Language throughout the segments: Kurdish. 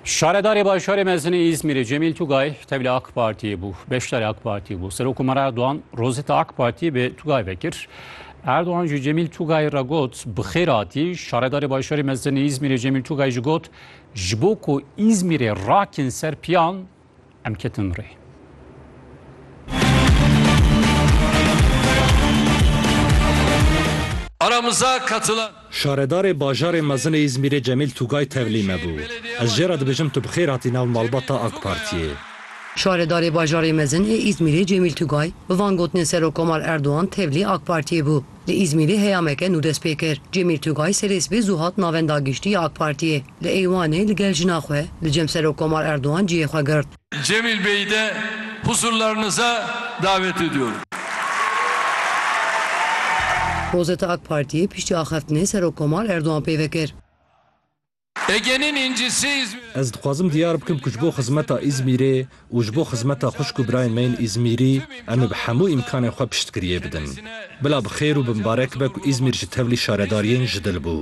Şaredarê Bajarê Mezinê Îzmîrê Cemîl Tugay tevlî AK Partiyê bû. Beşdarê AK Partiyê bû. Serokkomarê Erdogan rozeta AK Partiyê bi Tugay vekir. Erdogan ji Cemîl Tugayê re got bixêr hatî. Şaredarê Bajarê Mezinê Îzmîrê Cemîl Tugay ji got ji bo ku Îzmîrê rakin ser piyan Em ketin rê. Aramıza katılan Şaredarê bajarê mezin ê Îzmîrê Cemîl Tugay tevlî me bû. Ez jê re dibêjim tu bi xêr hatî nav malbata AK Partiyê. Şaredarê bajarê mezin ê Îzmîrê Cemîl Tugay bi van gotinên Serokkomar Erdogan tevlî AK Partiyê bû. Li Îzmîrê heyameke nû dest pê kir. Cemîl Tugay serê sibê zû hat navenda giştî ya AK Partiyê. Li Eywanê li gel jina xwe li cem Serokkomar Erdogan cihê xwe girt. Cemîl Beyî de huzurlarınıza davet ediyorum. Rozeta AK Partiyê piştî axeftinê Serokkomar Erdogan peyve kir. Ez dixwazim diyar bikim ku ji bo xizmeta Îzmîrê û ji bo xizmeta xwişk û birayên me yên Îzmîrî em ê bi hemû îmkanên xwe piştgiriyê bidin. Bila bi xêr û bi mibarek be ku Îzmîr ji tevlî şaredariyên ji dil bû.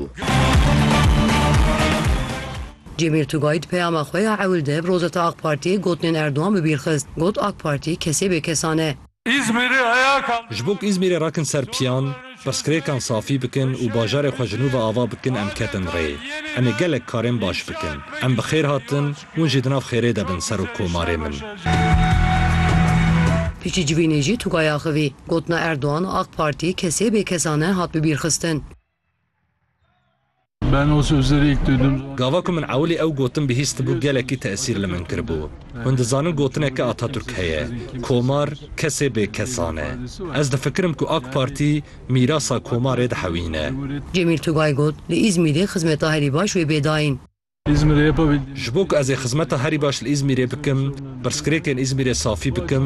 Cemîl Tugay di peyama xwe ya ewil de bi Rosetta Ak Partiyê gotinên Erdogan bi bîr xist. Got Ak Partî kesê bêkesan e. Îzmîrê heya ka. Ji bo ku Îzmîrê rakin ser piyan, pirsgirêkan safî bikin û bajarê xwe ji nû ve ava bikin em ketin rê. Em ê gelek karên baş bikin. Em bi xêr hatin, hûn jî di nav xêrê de bin Serok Komarê min. Piştî civînê jî Tugay axivî. Gotina Erdogan, Ak Partî, kesê bê kesa ne hat bibîrxistin. Gava ku min ewilî ew gotin bihîstibû gelekî tesîr li min kiribû. Hûn dizanin gotineke Atatürk heye, Komar kesê bê kesan e. Ez difikirim ku AK Partî mîrasa Komarê dihewîne. Cemîl Tugay got, Li Îzmîrê xizmeta herî baş wê bê dayîn. Ji bo ku ez ê xizmeta herî baş li Îzmîrê bikim, pirsgirêkên Îzmîrê safî bikim,